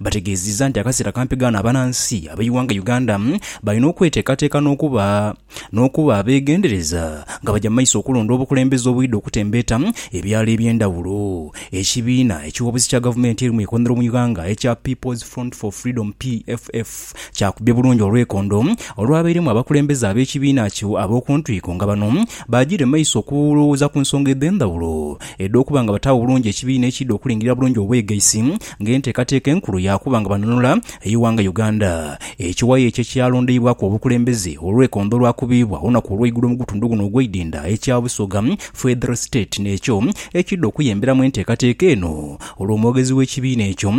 Bategeezizza nti akaseera kampi ghano abanansi ab'eighanga Uganda balina okweteekateeka n'okuba n'okuba abeegendereza nga baja mu maiso okulonda obukulembeze obwidha okutembeeta ebyalo eby'endhawulo Ekibiina ekiwoobesi kya gavumenti eri mu ikonero mu ighanga ekya People's Front for Freedom, PFF, kyakubye bulungi olwekondo olwabairemu abakulembeze ab'ekibiina ki ab'okuntwiko nga bano baajiire mu maiso okulowooza ku nsonga edh'endhawulo edh'okuba nga bataagho bulungi ekibiina ekiidha okulingirira bulungi obwegaisi ng'enteekateeka enkulu yaakuba nga banunula eighanga Uganda. Ekiwayi ekyo ekyalondeibwaku obukulembeze olw'ekondo olwakubiibwa olunaku olweigulo mu gutundu guno ogw'eidinda ekya Busoga Federal State n'ekyo ekiidha okuyemberamu enteekateeka eno olwo omwogezi w'ekibiina ekyo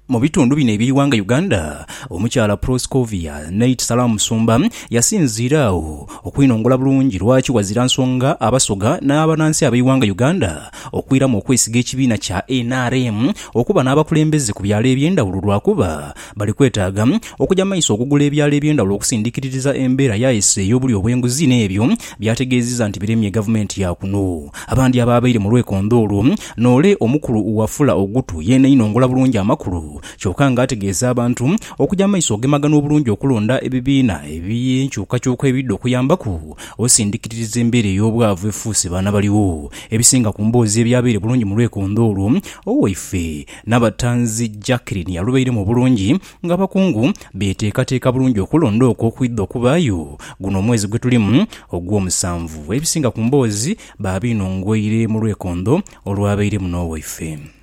mu bitundu bino eby'eighanga Uganda Omukyala Proscovia Nate Salaam Musumba yasinziira agho okwinongola bulungi lwaki wazira nsonga Abasoga n'abanansi ab'eighanga Uganda okwiramu okwesiga ekibiina kya nrm okuba n'abakulembeze ku byalo eby'endhawulo lwakuba bali kwetaaga okuja maiso okugula ebyalo eby'endhawulo okusindikiririza embeera yaese ey'obulyo obw'enguzi n'ebyo by'ategeezizza nti biremye gavumenti ya kuno. Abandi abaabaire mu lwekondho olwo n'ole omukulu Wafula Ogutu yeena inongola bulungi amakulu kyoka nga ategeeza abantu okuja maiso ogemagana obulungi okulonda ebibiina eby'enkyukakyuka ebidha okuyambaku osindikiririza embeera ey'obwavu efuuse baana baligho Ebisinga ku mboozi ebyabaire bulungi mu lwekondho olwo, owaife Nabatanzi Jacqueline yalubairemu obulungi ng'abakungu beteekateeka bulungi okulonda okwo okwidha okubaayo guno omwezi gwe tulimu ogw'omusanvu. Ebisinga ku mboozi baabiinongoire mu lwekondho olwabairemu n'owaife.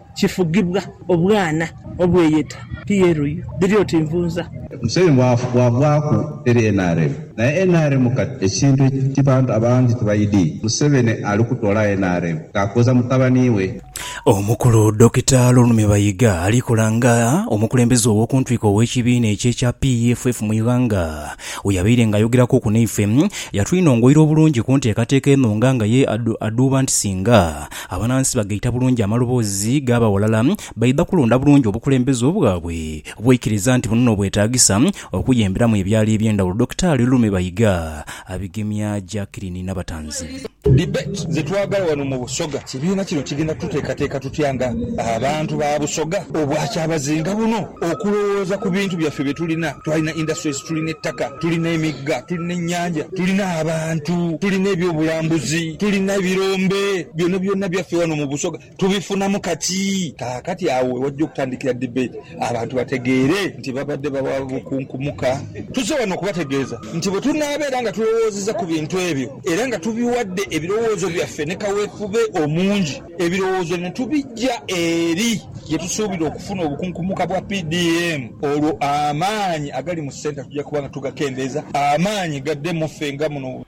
kifugibwa obwana obweyeta PLU. Dhiri oti nvunza. Museveni bwagwaku teri nrm naye nrm kati ekintu ekibantu abangi tibaidi museveni ali kutola nrm nga akoza mutabani we. Omukulu Dokita Lulme Bayiga alikola nga omukulembeze owokuntwiko owekibiina ekye kya PEFF mu ighanga weyabaire nga ayogeraku ku naife yatwinongoira obulungi kunteekateeka eno nga nga ye adhuuba nti singa Abanansi bagaita bulungi amaloboozi gaabo aghalala, baidha kulonda bulungi obukulembeze obwabwe bweikiriza nti buno n'obwetaagisa okuyemberamu ebyalo eby'endhawulo, Dokitaali Lume Bayiga abigemya Jacqueline Nabatanzi. Debate ze twagala wano mu Busoga. Kibiina kino kigenda tuteekateeka tutya nga abantu ba Busoga obwa kyabazinga buno? Okulowooza ku bintu byaffe bye tulina, twalina industries, tulina ettaka, tulina emigga, tulina ennyanja, tulina abantu, tulina eby'obulambuzi, tulina ebirombe, byona byona byaffe wano mu Busoga tubifunamu kati. Kaakati agho we wajja okutandikira debate abantu bategeere nti babadde bawa bukunkumuka. Tuzze wano okubategeeza nti bwe tunaabeera nga tulowoozezza ku bintu ebyo era nga tubiwadde ebirowoozo byaffe ne kaweefube omungi, Ebirowoozo bino tubija eri ye tusuubira okufuna obukunkumuka bwa PDM olwo amaanyi agali mu centre tuja kuba nga tugakendeeza amaanyi gadde mu ffe nga muno.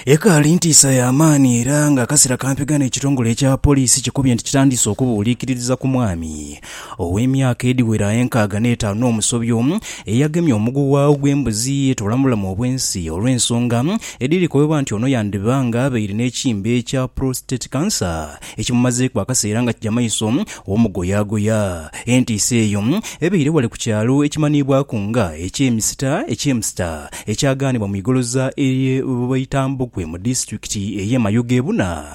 Ekaali ntiisa ya maani era ng'akasera kampiga n'ekitongole ekya poliisi kikubye nti kitandise okubuuliikiririza ku mwami ow'emyaka edhiwera enkaaga n'etaanu n'omusobyo, eyagemye omuguwa ogw'embuzi yetoola mu bulamu obw'ensi olw'ensonga edhirikobebwa nti ono yandiba nga abaire n'ekimbe ekya prostate cancer ekimumazeeku akaseera nga kija maiso omugoyaagoya. Entiisa eyo ebaire ghale ku kyalo ekimanhiibwaku nga eky'e Misita, Echemster, ekyagaanibwa mu igoloza ery'e Bwaitambukwe mu disitulikiti ey'e Mayoga e Buna.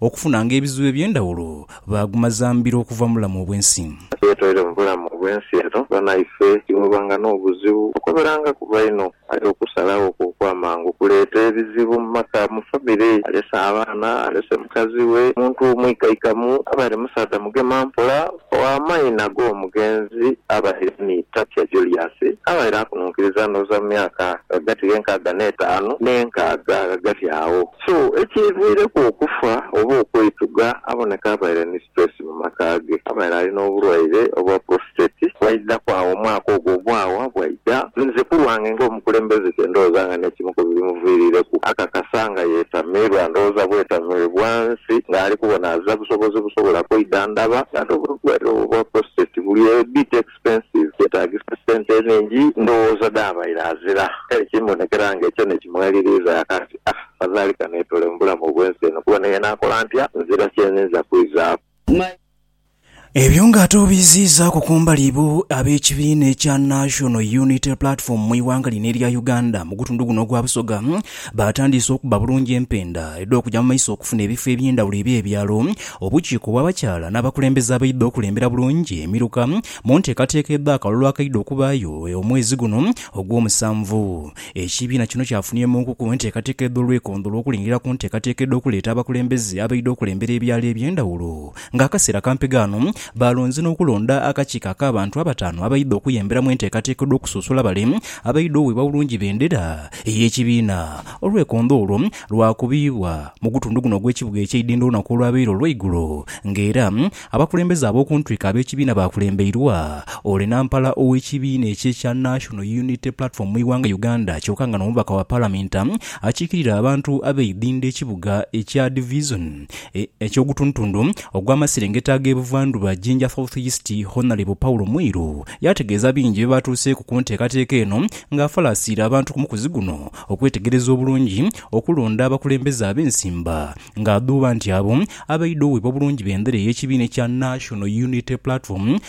Okufunanga ebizibu eby'endhawulo, baaguma za mbiro okuva mu bulamu obw'ensi. Kasita toire mu bulamu obw'ensi eno, banaife tiboobanga n'obuzibu okukoberangaku baino. Aye okusalagho okwo okw'amangu kuleeta ebizibu mu maka, mu famire. Alese abaana, alese mukazi we, omuntu omuikaikamu, abaire musaadha mugema mpola. Ow'amaina g'omugenzi abaire ni Tapia Julius, abaire akununkiriza ndhooza mu myaka ghagati gh'enkaaga n'etaanu n'enkaaga ghagati agho. So ekiviireku okufa oba okweitugha aboneka abaire ni stress mu maka ge. Abaire ali n'obulwaire obwa prostate. Bwaidhaku agho omwaka ogwo ogwawa bwa. Bya, Muzukulu wange ng'omukulembeze kye ndowooza nga n'ekimu ku bimuviirireku akakasa nga yetamirwa, ndowooza bwetamiribwa nsi ng'ali kubona aza busobozi busobola kwidhandhaba nga n'obulwaire obwo obwa prostate buli a bit expensive, kyetaagisa sente enhingi, ndowooza dh'abaire azira. Kale kimbonekera nga ekyo n'ekimweliriiza yakati, Ah, afadhali kaneetole mu bulamu obw'ensi eno kuba naye naakola ntya nzira kye nninza kwizaaku. Ebyo nga ate obiiziizaaku kumbali ibo ab'ekibiina ekya National Unity Platform mu ighanga lino erya Uganda mu gutundu guno ogwa Busoga baatandiise okubba bulungi empenda edh'okugya mu maiso okufuna ebifo eby'endhawulo eby'ebyalo, obukiiko bw'abakyala n'abakulembeze abaidha okulembera bulungi emiruka mu nteekateeka edh'akalulu akaidha okubaayo omwezi guno ogw'omusanvu. Ekibiina kino kyafunye mu nkukuo enteekateeka edh'olwekondho olw'okulingirira ku nteekateeka edh'okuleeta abakulembeze abaidha okulembera ebyalo eby'endhawulo Ng'akaseera kampi ghano, baalonze n'okulonda akakiiko ak'abantu abataanu abaidha okuyambira mu enteekateeka edh'okusunsula bale abaidha oweebwa bulungi bendera ey'ekibiina. Olwekondho olwo lwakubibwa mu gutundu guno ogw'ekibuga eky'e Idinda olunaku olwabaire olweigulo ng'era abakulembeze ab'oku ntwiko ab'ekibiina baakulembeirwa ole Nampala ow'ekibiina ekyo ekya National Unity Platform mu ighanga Uganda kyoka nga n'omubaka wa Palamenti akiikirira abantu ab'e Idinda ekibuga ekya Divizoni eky'ogutundutundu ogw'amaserengeta ag'ebuvandhuba Jinja South East, Honalebo Paulo Mwiru yaategeeza bingi bye baatuuseeku ku nteekateeka eno nga afalaasiira abantu ku mukuzi guno okwetegereza obulungi okulonda abakulembeze ab'ensimba ng'adhuuba nti abo abaidha owebwa bulungi bendera ey'ekibiina ekya National Unity Platform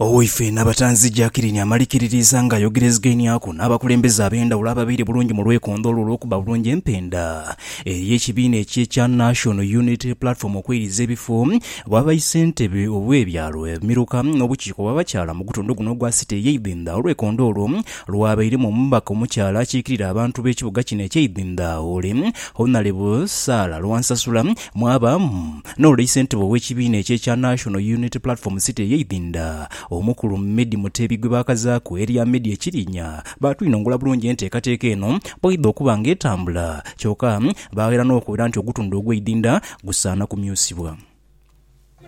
Owoife Nabatanzi Jackeline amalikiririza nga ayogerezgainiaku n'abakulembeze ab'endhawulo ababaire bulungi mu lwekondho olwo olw'okubba bulungi empenda eri ekibiina ekye kya National Unity Platform okweiridha ebifo bwa baisentebe obe byalo, emiruka n'obukiiko bwa bakyala mu gutundu guno ogwa City eye Idhindha olwekondho olwo lwabairemu omubaka omukyala akikirira abantu b'ekibuga kino ekye Idhindha Ole Honalebo Sarah Lwansasula mwaba mu N'olwo isentebe ow'ekibiina ekyo ekya National Unity Platform City eye Idinda, Omukulu Meddie Mutebi gwe baakazaaku erya Meddie Ekirinya baatwinongula bulungi enteekateeka eno bw'eidha okuba nga etambula kyoka baaghaera n'okubera nti ogutundhu ogw'e Idinda gusaana kumyusibwa.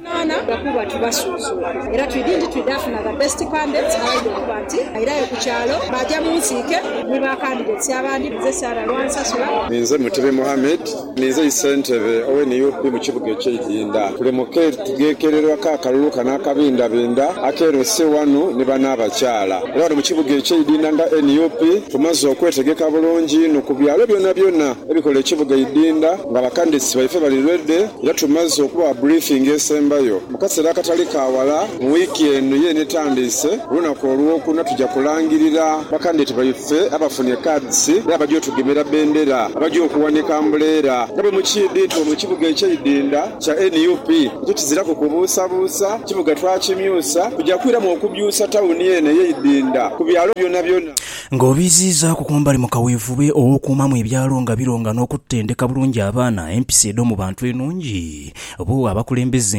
Okunaana lwa kuba tubasuuzula era twidhi nti twidha funa the best candidates abaidha okuba nti bairayo ku kyalo baaja mu nsiike ni ba candidates abandi. Nze Sarah Lwansasula. Ninze Mutebi Mohammed Ninze Isentebe owe nup mu kibuga ekye Idinda. Tuli mu ketegekererwa ka kalulu kano akabindabinda ake LC wanu ni bano abakyala. Era wano mu kibuga ekye Idinda nga nup tumaze okwetegeka bulungi inho ku byalo byona byona ebikola ekibuga Idinda nga ba candidates baife bali ready era tumaze okubawa briefing esembayo mu kasera akatali ka wala mu week eno yene etandiise olunaku olwokuna tuja kulangirira ba candidate baife Ffe abafunye cards era abagya otugemera bendera, abagya okuwanika ambuleera nga bwe mukiidhi nti wano kibuga ekyeidinda kya nup ekyo kiziraku kubuusabuusa, kibuga twakimyusa, tugya kwiramu okubyusa tawuni eno eyeidinda ku byalo byonabyona. Nga obiiziizaaku ku mbali mu kaweefube ow'okuumamu ebyalo nga bironga n'okutendeka bulungi abaana, empisa edh'omu bantu enungi, bo abakulembeze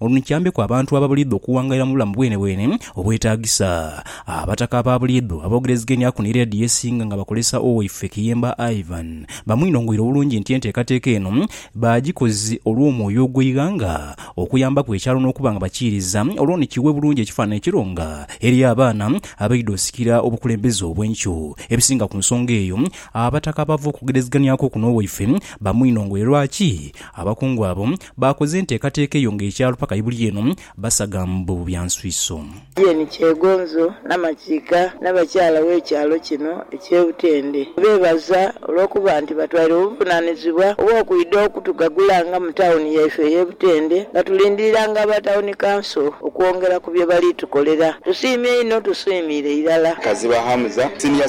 Olwo ni kiambeku abantu ababuliidho okuwangalira mu bulamu bwenebwene obwetaagisa. Abataka ababuliidho aboogerezegeniaku ni leediyo esinga nga bakozesa Owaife Kiyemba Ivan, bamwinongoire obulungi nti enteekateeka eno baagikoze olw'omwoyo ogw'eighanga okuyambaku ekyalo n'okuba nga bakiiriza olwo ni kiwe bulungi ekifaananyi ekirunga eri abaana abaidha osikira obukulembeze obw'enkyo. Ebisinga ku nsonga eyo, abataka abaava okugerezeganiaku oku n'Owaife bamwinongoire lwaki abakungu abo Baakoze enteekateeka eyo nga ekyalo paka ibuli eno basaga mbu bya nswiso. Jane Kyegonzo Namakiika n'abakyala w'ekyalo kino eky'e Butende beebaza olw'okuba nti batwaire obuvunaanizibwa obw'okwidha okutugagulanga mu tawuni yaife ey'e Butende nga tulindiriranga aba Tawuni Kanso okwongera ku bye bali tukolera. Tusiimye inho, tusiimiire irala. Kaziba Hamza, Senior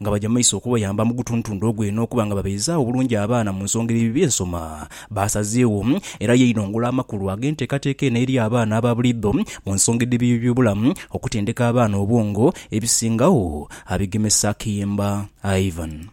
nga baja mu maiso okubayamba mu gutuntundha ogwe n'okuba nga babeizaawo bulungi abaana mu nsonga edho bye nsoma baasazeewo. Era yainong'ola amakulu ag'enteekateeka eno eri abaana aba buliidho mu nsonga edh'eby'ebyobulamu, okutendeka abaana obwongo, ebisingagho, abigemesa Kiyimba Ivan.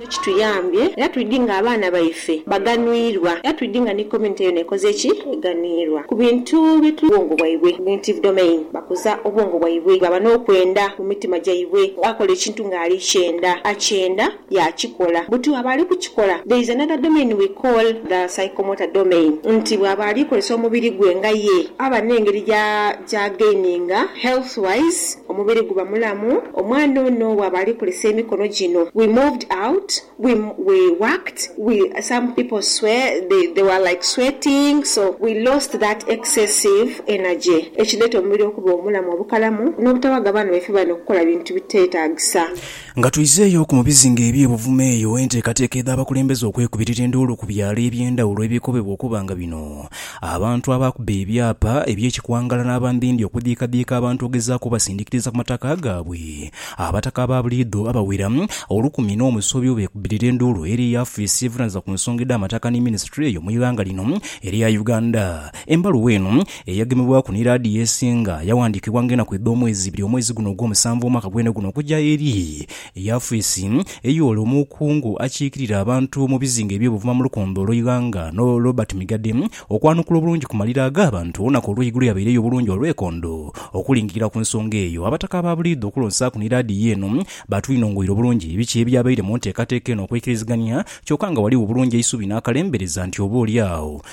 Kituyambye era twidhi nga abaana baife baganhwirwa era twidhi nga ni community yona ekoze ki? Eganhwirwa ku bintu bye tuli bwongo bwaibwe, cognitive domain, bakuza obwongo bwaibwe bwaba n'okwenda mu mitima gyaibwe akola ekintu nga ali kyenda akyenda yaakikola buti bwaba ali kukikola there is another domain we call the psychomotor domain nti bwaba ali kozesa omubiri gwe nga ye aba n'engeri gya gya gaininga health wise Omubiri guba mulamu. Omwana ono bwaba ali kozesa emikono gino, we moved out, we we worked, we some people swe they they were like sweating so we lost that excessive energy ekileta omubiri okuba omulamu obukalamu nobutawaga baana baife bano kukola bintu bitetagisa. Nga twizeeyo ku mu bizinga eby'e Buvuma eyo enteekateeka edh'abakulembeze okwekubirira enduulu ku byalo eby'endhawulo ebikobebwa okuba nga bino abantu abaakuba ebyapa eby'ekikwangala n'abambindi okudhiikadhiika abantu okugezaaku obasindikiriza ku mataka gaabwe Abataka aba buliidho abawera olukumi n'omusobi beekubirira enduulu eri yaafiisi evunaanyizibwa ku nsonga edh'amataka ni minisitule eyo mu ighanga lino erya Uganda. Embaluwa eno, eyagemebwaku ni laadiyo esinga, yawandiikibwa ng'enaku edh'omwezi ibiri omwezi guno ogwomusanvu omwaka gwene guno okuja eri yafisi ey'ole omukungu akiikirira abantu mu bizinga eby'ebuvuma mu lukonde olw'eighanga no Robert Migadde okwanukula obulungi ku malira ag'abantu olunaku olw'eigulo yabaireyo obulungi olwekondo okulingirira ku nsonga eyo. Abataka abaabuliidha okulonsaaku ni laadiyo eno baatwinongoire obulungi biki ebyabaire mu nteekateeka eno okweikirizigania kyoka nga ghaligho bulungi eisubi n'akalembereza nti oba oli agho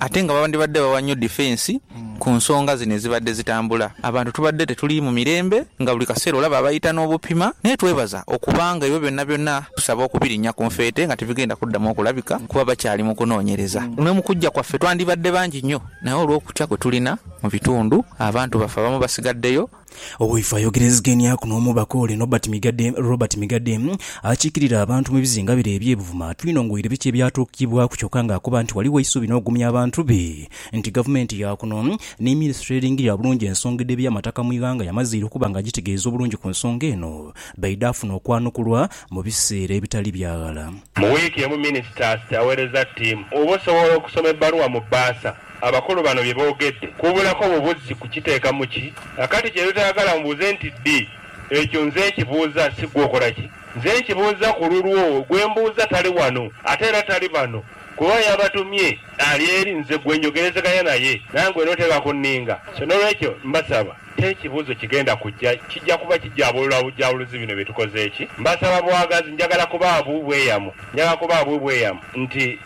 ate nga bandibadde bawa nnyo difensi ku nsonga zino ezibadde zitambula. Abantu tubadde tetuli mu mirembe nga buli kaseera olaba abayita n'obupima naye twebaza okuba nga ebyo byonna byonna tusaba okubirinnya ku nfeete nga tibigenda kuddamu okulabika kuba bakyali mu kunoonyereza. Ne mu kujja kwaffe twandibadde bangi nnyo naye olw'okutya kwe tulina mu bitundu, abantu baffe abamu basigaddeyo Owoife ayogerezegeniaku n'omubaka ole Nobert Migadde, Robert Migadde akiikirira abantu mu bizinga bire eby'e Buvuma atwinongoire biki ebyatuukibwaku kyoka nga akoba nti ghaligho eisuubi n'okugumya abantu be nti gavumenti ya kuno ni minisitule eringirira obulungi ensonga edh'ebyamataka mu ighanga yamazeire okuba nga agitegeeza obulungi ku nsonga eno baidaafuna okwanukulwa mu biseera ebitali bya ghala. Mu wiiki emu minisita awereza ttiimu oba osobola okusoma ebbaluwa mu bbaasa. Abakulu bano bye boogedde kubulaku bubuzzi kukiteekamu ki? Na kati kye totayagala mubuuze nti ddi, ekyo nze nkibuuza si ggwe okola ki? Nze nkibuuza ku lulwo, gwe mbuuza tali wano ate era tali bano kuba ayabatumye ali eri nze gwe njogerezeganya naye nangwe n'oteeba ku nninga. So n'olwekyo mbasaba t'ekibuuzo kigenda kujja, kijja kuba kijaabulula bujaabuluzi bino bye tukoze ki? Mbasaba bwagazi, njagala kubaabu bweyamo, njagala kubaabu bweyamo nti.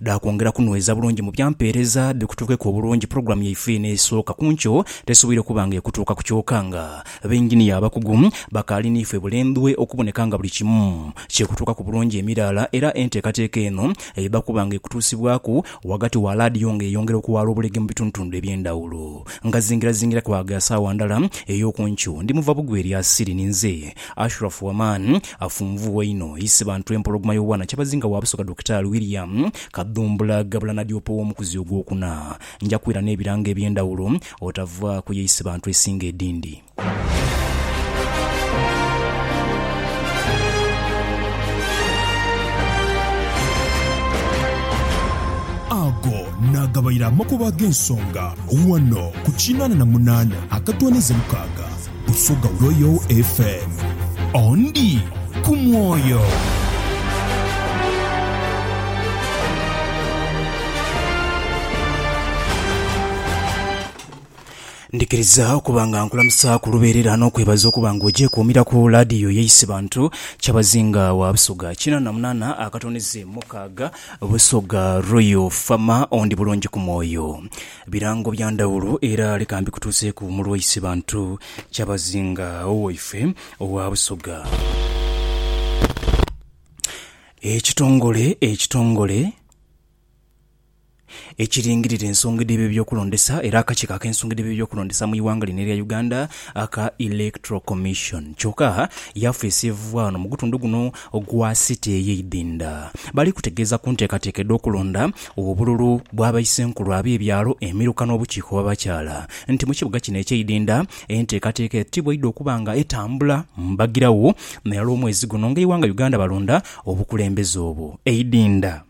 dha kwongera kunweza bulungi mu bya mpeereza dhe kutuukeku obulungi pulogulaamu yaife eno esooka ku nkyo tesoboire kuba nga ekutuuka ku kyoka nga benginiya abakugu bakaali niife bulembwe okuboneka nga buli kimu kyekutuukaku bulungi emiraala era enteekateeka eno eba kuba nga ekutuusibwaku ghagati wa laadiyo nga eyongera okuwaala obulege mu bitundutundu eby'endhawulo nga zingirazingira kwaaga saawa ndala ey'oku nkyo. Ndi muva bugweri asiri ninze Ashraf Waman. Afunvugha inho Isibantu Empologoma y'obwana Kyabazinga wa Busoga Dokitaali William Kadhumbula Gabula Nadiopa ow'omukuzi ogwokuna. Nja kwira n'ebirango eby'endhawulo otavaaku ye Isibantu esinga edindi. Ago naagabaire amakubo ag'ensonga ghano ku kinaana na munaana akatooneza mukaaga. Busoga Royal FM. Ondi ku mwoyo. Ndhikiriza okuba nga nkulamusa ku lubeerera n'okwebaza okuba nga ogyekuumiraku laadiyo yaise bantu. Kyabazinga wa Busoga kinana munana akatonize mukaaga, Busoga Royal FM, ondi bulungi ku mwoyo. Birango bya ndhawulo era lekambi kutuuseeku Mulwaisi Bantu Kyabazinga Owaife owa Busoga. Ekitongole ekitongole ekiringirira ensonga edh'ebyokulondesa era akakiiko ak'ensonga edh'ebyokulondesa mu ighanga lino erya Uganda aka Electoral Commission kyoka yafeesi evugha wano mu gutundu guno ogwa City ey'eidinda bali kutegeeza ku nteekateeka edh'okulonda obululu bwa baisenkulu ab'ebyalo, emiruka n'obukiiko bw'abakyala nti mu kibuga kino eky'eidinda enteekateeka etibwaidha okuba nga etambula mbagiragho nairala omwezi guno ng'eighanga Uganda balonda obukulembeze obwo eidinda.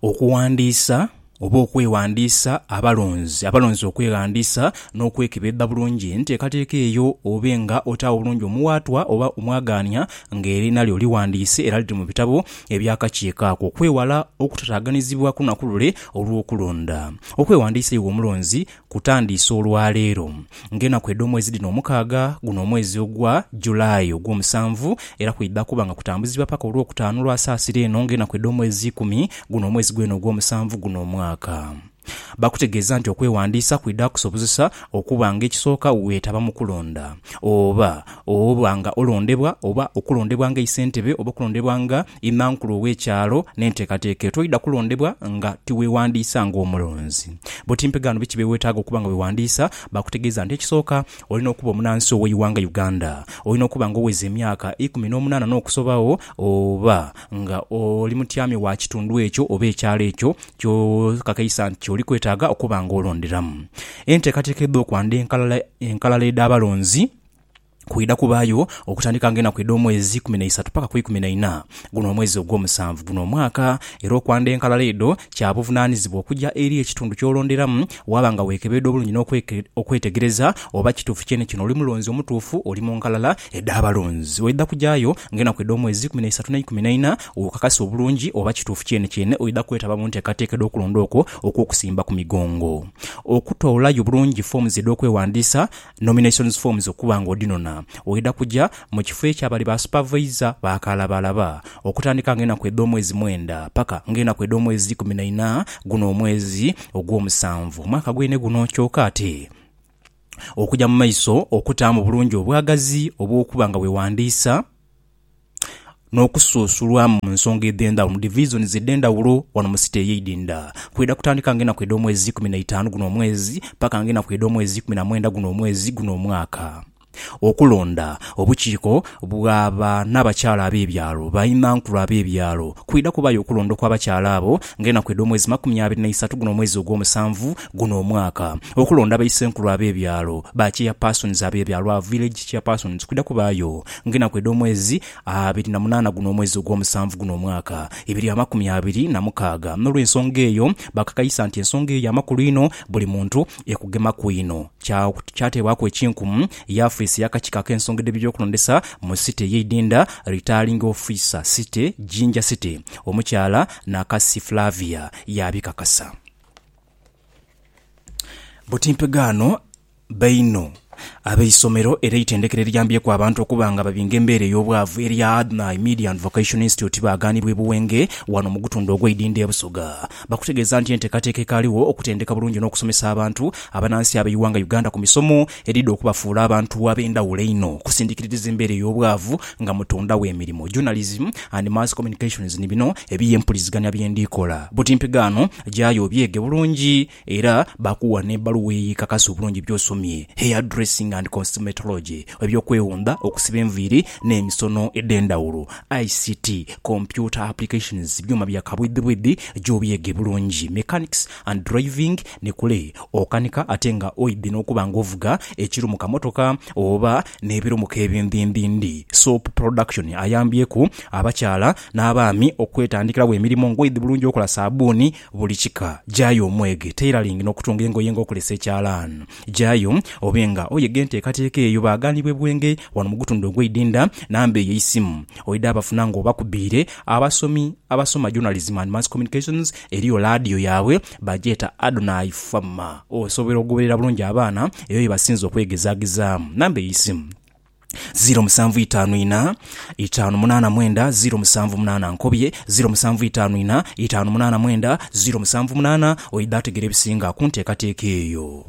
Okuwandiisa oba okweghandiisa abalonzi. Abalonzi okweghandiisa n'okwekebedha bulungi enteekateeka eyo obe nga otaagho bulungi omuwaatwa oba omwagaania nga erina lyo lighandiise era liri mu bitabo eby'akakiiko ako okwewala okutataaganizibwa ku naku lule olw'okulonda. Okweghandiisa iwe omulonzi Kutandiise olwaleero, nga enaku edh'omwezi dhino omukaaga, guno omwezi ogwa July ogw'omusanvu, era kwidha kuba nga kutambuzibwa paka olw'okutaanu lwa Saasira eno nga enaku edh'omwezi ikumi, guno omwezi gwene ogw'omusanvu guno omwaka. Bakutegeeza nti okwewandiisa kwidha kukusobozesa okuba nga ekisooka weetaba mu kulonda, oba Oba nga olondebwa, oba okulondebwa nga eisentebe, oba okulondebwa nga Immankulu ow'ekyalo, n'enteekateeka eyo, toidha kulondebwa nga tiweewandiisa nga omulonzi. Bwoti mpegaano biki bye weetaaga okuba nga weewandiisa? Baakutegeeza nti ekisooka, olina okuba omunansi ow'eighanga Uganda, olina okuba nga oweza emyaka ikumi n'omunaana n'okusobagho, oba nga oli mutyami wa kitundu ekyo oba ekyalo ekyo ky'okakaisa nti ky'oli kwetaaga okuba nga olonderamu. Enteekateeka edh'okwanda enkalala edh'abalonzi. Kwidha kubaayo okutandika nga enaku edh'omwezi ikumi na isatu paka ku ikumi na ina guno omwezi ogw'omusanvu guno omwaka, era okwandha enkalala edho kya buvunanizibwa okuja eri ekitundu ky'olonderamu waaba nga wekebeedha obulungi n'okwetegereza oba kituufu kyene kyene oli mulonzi omutuufu oli mu nkalala edh'abalonzi. Oidha kujaayo nga enaku edh'omwezi ikumi na isatu n'eikumi na ina wokakase obulungi oba kituufu kyene kyene oidha kwetaba mu nteekateeka edh'okulonda okwo okw'okusimba ku migongo. Okutoolayo bulungi foomuzi edh'okwewandiisa Nominations forms okuba nga odhinona waidha kuja mu kifo eky'abali ba supavayiza ba kalabalaba okutandika nga enaku edh'omwezi mwenda paka nga enaku edh'omwezi ikumi na ina guno omwezi ogw'omusanvu omwaka gwene guno kyoka ate okuja mu maiso okutaamu bulungi obwagazi obw'okuba nga wewandiisa. n'okusuusulwa mu nsonga edh'endhaghulo, mu divisions edh'endhaghulo ghano mu city ey'eidhindha. Kwidha kutandika ng'enaku edh'omwezi ikumi na itaanu guno omwezi paka ng'enaku edh'omwezi ikumi na mwenda guno omwezi guno omwaka. Okulonda obukiiko bwa ba n'abakyala ab'ebyalo, bainhankulu ab'ebyalo. Kwidha kubaayo okulonda okw'abakyala abo ng'enaku edh'omwezi makumi abiri na isatu guno omwezi ogw'omusanvu guno omwaka. Okulonda baisenkulu ab'ebyalo, ba chairpersons ab'ebyalo, aba village chairpersons. Kwidha kubaayo. Ng'enaku edh'omwezi abiri na munaana guno omwezi ogw'omusanvu guno omwaka ibiri amakumi abiri na mukaaga. N'olw'ensonga eyo bakakaisa nti ensonga eyo ya makulu inho, buli muntu ekugemaku inho. Kya, kyateebwaku ekinkumu ye afiisi ey'akakiiko ak'ensonga edh'eby'okulondesa mu City ey'eidinda, Returning Officer, City, Jinja City, Omukyala Nakasi Flavia, yaabikakasa. Buti mpegaano. Baino abeisomero era eitendekero eriyambyeku abantu okuba nga babinga embeera ey'obwavu erya Adnai Media and Vocation Institute baaganibwa e Buwenge wano mu gutundhu ogw'e Idindho e Busoga bakutegeeza nti enteekateeka ekaaliwo okutendeka bulungi n'okusomesa abantu abanansi ab'eighanga Uganda ku misomo edhidha okubafuula abantu ab'endhawulo einho okusindikiririza embeera ey'obwavu nga mutondagho emirimo, journalism and mass communications ni bino ebiye mpuliziganya bye ndhi kola buti mpigaano gyayo obyege bulungi. Era bakuwa n'ebbaluwa eyo ekakasa obulungi by'osomye, Hair Dressing and Cosmetology, eby'okwewunda, okusiba enviiri n'emisono edh'endhawulo, ICT, Computer Applications, byuma bya kabwidhibwidhi gy'obyege bulungi, Mechanics and Driving, ni kule okanika ate nga oidhi n'okuba nga ovuga ekirumuka mmotoka oba n'ebirumuka ebindhindhindhi. Soap Production ayambyeku abakyala n'abaami okwetandikiragho emirimo ng'oidhi bulungi okola saabbuuni, Buli kika, gyayo omwege tailoring n'okutunga engoye nga okolesa ekyalaani. Gyayo obe nga oyega enteekateeka eyo baagaanibwa e Bwenge wano mu gutundu ogw'e Idinda, namba eyo eisimu oidha bafuna nga obakubiire. Abasomi abasoma Journalism and Mass Communications eriyo laadiyo yaabwe bagyeta Adonai Fm. Osobola okugoberera bulungi abaana eyo ye basinze okwegezaagezaamu. Namba eisimu. ziro musanvu itaanu ina itaanu munaana mwenda ziro musanvu munaana nkobye ziro musanvu itaanu ina itaanu munaana mwenda ziro musanvu munaana oidha ategera ebisinga kunteekateeka eyo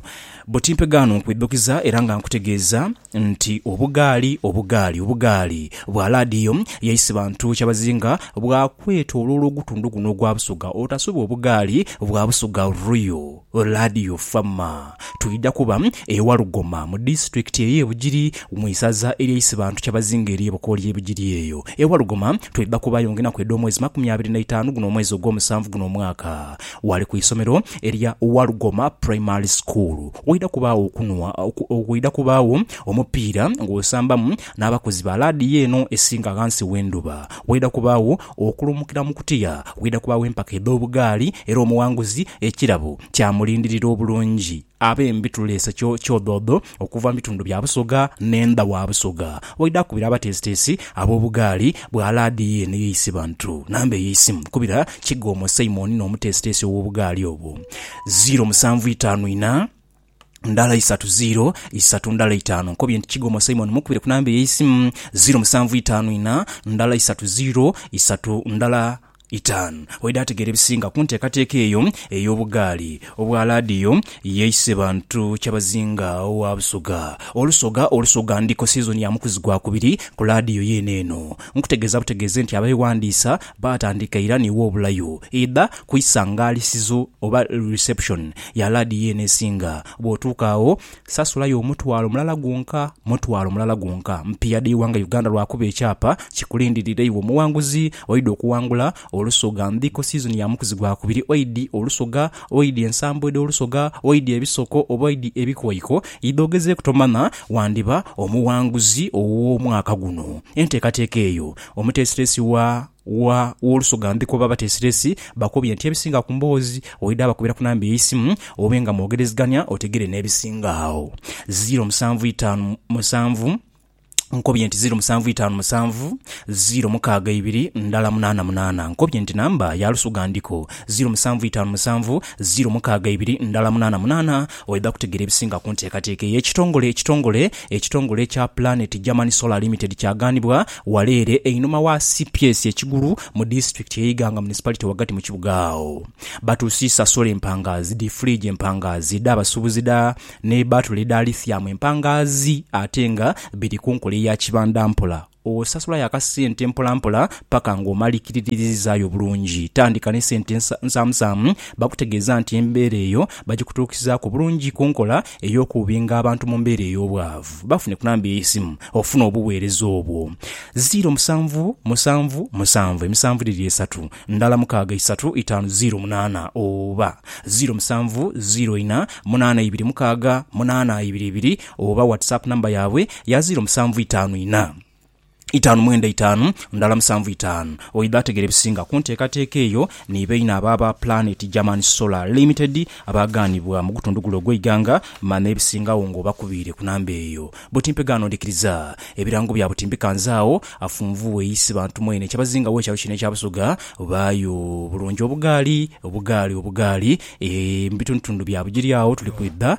buti mpegaano nkwidhukiza era nga nkutegeeza nti obugaali obugaali obugaali bwa laadiyo yaisi bantu kyabazinga bwakwetoloolwa ogutundhu guno ogwa Busoga otasubwa obugaali bwa Busoga Royal Radio Fama twidha kuba e Walugoma mu disitulikiti ey'e Bugiri mu isaza erya Isibantu Kyabazinga ery'e Bukooli e Bugiri eyo. E Walugoma twidha kubaayo ng'enaku edh'omwezi makumi abiri na itaanu guno omwezi ogw'omusanvu guno omwaka. Wali ku isomero erya Walugoma Primary School. Waidha kubaagho okunhwa, waidha kubaagho omupiira ng'osambamu n'abakozi ba laadiyo eno esinga ghansi w'endhuba. Waidha kubaagho. Okulumukira mu kutya waidha kubaagho empaka edh'obugaali era omughanguzi ekirabo kyamulindirira obulungi. Abe mbi tuleese kyodhoodho okuva mu bitundu bya Busoga n'endha wa Busoga waidha kubira abateesiteesi ab'obugaali bwa laadiyo eno eye Isibantu. Namba eye isimu kubira Kigoomo Simon n'omuteesiteesi ow'obugaali obwo, ziiro musanvu itaanu inha, ndala isatu ziiro isatu ndala itaanu nkobye nti Kigomo Simon mukubire ku namba ey'eisimu ziiro musanvu itaanu ina ndala isatu ziiro isatu ndala itaanu. Waidha ategeera ebisinga ku nteekateeka eyo ey'obugaali obwa laadiyo yeise bantu kyabazinga wa Busoga. Olusoga Olusoga ndiko sizoni ya mukuzi gwa kubiri ku laadiyo yeene eno. Nkutegeeza butegeeze nti abeewandiisa Baatandika ira ni w'obulayo idha ku isangaalisizo oba reception ya laadiyo eno esinga. Bw'otuuka agho, sasulayo omutwalo mulala gwonka, mutwalo mulala gwonka. Mpiiya dha ighanga Uganda lwakuba ekyapa kikulindirira iwe omuwanguzi. Oidhi okuwangula Olusoga Ndhiko Season ya mukuzi gwa kubiri, oidhi Olusoga, oidhi ensambo edh'Olusoga, oidhi ebisoko oba oidhi ebikoiko, idha ogezeeku tomanya wandiba omuwanguzi ow'omwaka guno. Enteekateeka eyo. Omuteesiteesi wa, wa, w'olusoga ndhi kuba bateesiteesi bakubye nti ebisinga ku mboozi oidha bakubira ku namba ey'eisimu obe nga mwogerezegania otegere n'ebisinga agho. Ziiro musanvu itaanu musanvu, Nkobye nti ziiro musanvu itaanu musanvu, ziiro mukaaga ibiri ndala munaana munaana. Nkobye nti namba ya lusoga ndhiku. Ziiro musanvu itaanu musanvu, ziiro mukaaga ibiri ndala munaana munaana. Oidha kutegeera ebisinga ku nteekateeka eyo. Ekitongole ekitongole ekitongole ekya Planet German Solar Limited kyagaanibwa wala ere einhuma wa cps e Kigulu mu disitulikiti ye Iganga Municipality wagati mu kibuga agho. Batuusiisa solar empangaazi, dhi fridge empangaazi, edha basubuzi dha ne batule edha lithium empangaazi ate nga biri ku nkola eya kibandampola. Osasulayo akasente mpolampola paka nga omalikiriririzaayo bulungi. Tandika ni sente nsaamusaamu, bakutegeeza nti embeera eyo bagikutuukizaaku bulungi ku nkola ey'okubinga abantu mu mbeera ey'obwavu. Bafune ku namba ey'eisimu ofune obuweereza obwo. Ziiro musanvu musanvu musanvu emisanvu dhiri esatu ndala mukaaga isatu itaanu ziiro munaana oba ziiro musanvu ziiro ina munaana ibiri mukaaga munaana ibiri ibiri. Oba WhatsApp number yaabwe ya ziro musanvu itaanu ina itaanu mwenda itaanu ndala musanvu itaanu. Oidha ategera ebisinga ku nteekateeka eyo ni baine abo aba Planet German Solar Limited abaagaanibwa mu gutundu gule ogw'eighanga ma n'ebisingagho ng'obakubiire ku namba eyo. Buti mpe gaano ndhikiriza. Ebirango bya buti mbikanze agho afunvughe isi bantu mwene ekyabazingagho ekyalo kino ekya Busoga baayo bulungi obugaali, obugaali, obugaali, eeh, mu bitundutundu bya Bugiri agho tuli kwidha.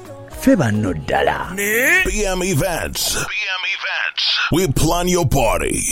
ffe banno ddala. BM Events, we plan your party.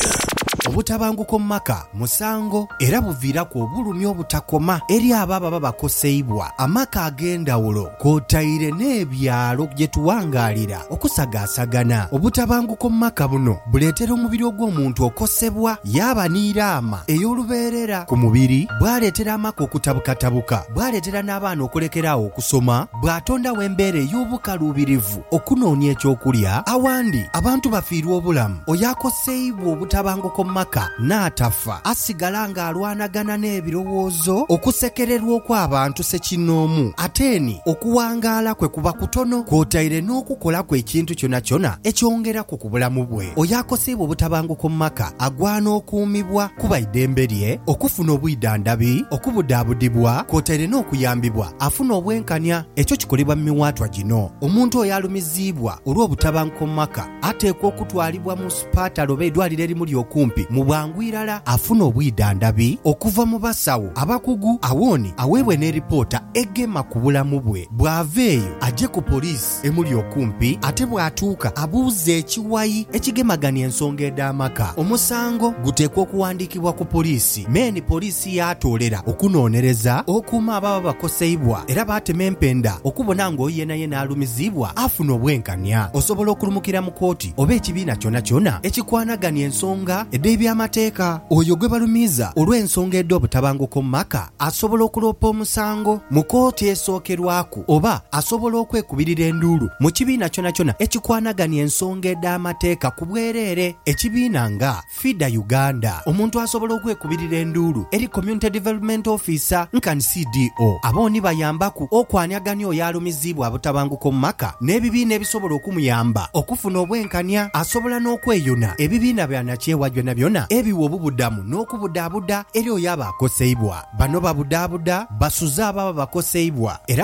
Obutabanguko mu maka musango era buviiraku obulumi obutakoma eri abo ababa bakoseibwa. Amaka ag'endhawulo kwotaire n'ebyalo gye tuwangaalira okusagaasagana. Obutabanguko mu maka buno buleetera omubiri ogw'omuntu okosebwa yaaba ni raama ey'olubeerera ku mubiri, bwaleetera amaka okutabukatabuka, bwaleetera n'abaana okulekera agho okusoma. bw'atondagho embeera ey'obukaluubirivu okunoonia eky'okulya, awandi abantu bafiirwa obulamu, oyo akoseibwa obutabanguko mu maka n'atafa asigala ng'alwanagana n'ebirowoozo, okusekererwa okw'abantu ssekinnoomu, ate ni okuwangaala kwe kuba kutono kwotaire n'okukolaku ekintu kyonakyona ekyongeraku ku bulamu bwe. Oyo akoseibwa obutabanguko mu maka agwana okuumibwa kuba idembe lye okufuna obwidhandhabi, okubudaabudibwa kwotaire n'okuyambibwa. Afuna obwenkanya. Ekyo kikolebwa mu miwaatwa gino, Omuntu oyo alumiziibwa olw'obutabanguko mu maka ateekwa okutwalibwa mu supatale oba eidwaliro erimuli okumpi mu bwangu irala afune obwidhandhabi okuva mu basawo abakugu awoni aweebwe n'eripoota egema ku bulamu bwe. Bw'ava eyo aje ku poliisi. emuli okumpi ate bw'atuuka abuuza ekiwayi ekigemagania ensonga edh'amaka, omusango guteekwa okuwandiikibwa ku poliisi me ni poliisi yaatoolera okunoonereza okuuma ababa bakoseibwa era baatema empenda okubona nga oyo yenayena alumiziibwa afuna obwenkania. Osobola okulumukira mu kooti oba ekibiina kyonakyona ekikwanagania ensonga edh'ebyamateeka. Oyo gwe balumiiza olw'ensonga edh'obutabanguko mu maka asobola okuloopa omusango mu kooti esookerwaku. oba asobola okwekubirira enduulu mu kibiina kyonakyona ekikwanagania ensonga edh'amateeka ku bwereere. Ekibiina nga FIDA Uganda, omuntu asobola okwekubirira enduulu eri Community Development Officer nkan CDO. Abo ni bayambaku okwaniagania oyo alumiziibwa abutabanguko omu maka n'ebibiina ebisobola okumuyamba okufuna obwenkania. Asobola n'okweyuna ebibiina bya nakyewa byonabyona ebiwa obubudamu n'okubudaabuda eri oyo aba akoseibwa. Bano babudaabuda, basuza abo ababa bakoseibwa, era.